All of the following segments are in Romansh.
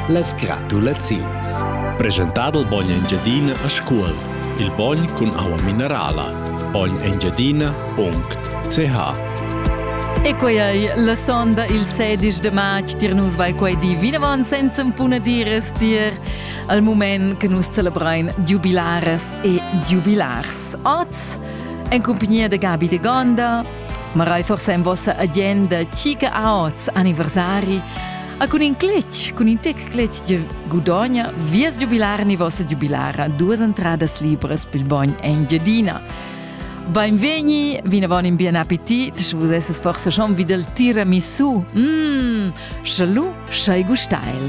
Las gratulaziuns. Presentà dal bogn Engiadina a Scuol. Il bogn cun aua minerala. bognengiadina.ch E quei ei la sonda il 16 de march tier nus vai quei di vinavon senza puna dires tier al moment che nus celebrein jubilares e jubilars. Oz en compagnia de Gabi de Gonda Ma rai forsa en vossa agenda chi che aots anniversari a cun in cletg, cun in tec cletg che gudogna vies giubilar ni vossa giubilara duas entradas libras pil bogn Engiadina. Beinvegni, vinavon in bien appetit, sche vus esses forse schon vid il tiramisù. Mmm, Sche lu sch'ei gustail.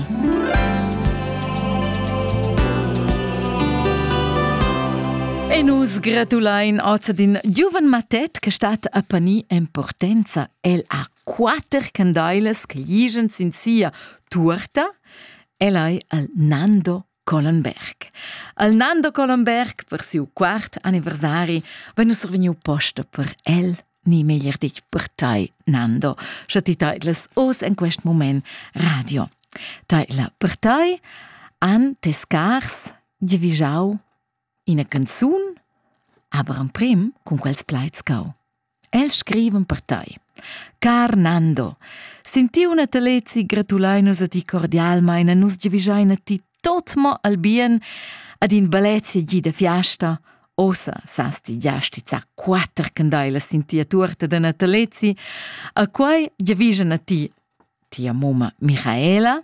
E nus gratulein oz d'in giuven matet che stat a pani importanza. El ha quater candailas che liegen sin sia tuorta. El ei al Nando Collenberg. Al Nando Collenberg per siu quart anniversari vegn survegniu posta per el ni meglier ditg per tai, Nando, sche ti teitlas oz en quest moment radio. Teitla per tai, an tes scars divigiau ina canzun, aber en prim cun quels plaids cau. Els scrivan per tai. Car Nando, sentiu una talezi gratulein nus a ti cordialmein e nus giavischein a ti tot mo al bien ad in balezia gi da fiasta. Ossa sas ti già stizza quatter candailas sin tia tuorta da natalezi, a quai giavischan a ti tia mamma Michaela,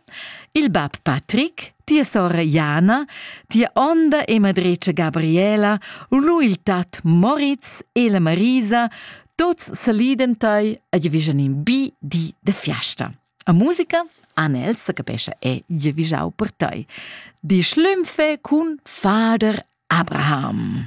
il bab Patrick, tia sora Jana, tia onda e madretscha Gabriela, lu il tat Moritz e la Marisa, tuts saliden tei e giavischan in bi di de fiasta. A musica Anel se capescha e giavischau per tei. Di schlümpfe cun Fader Abraham.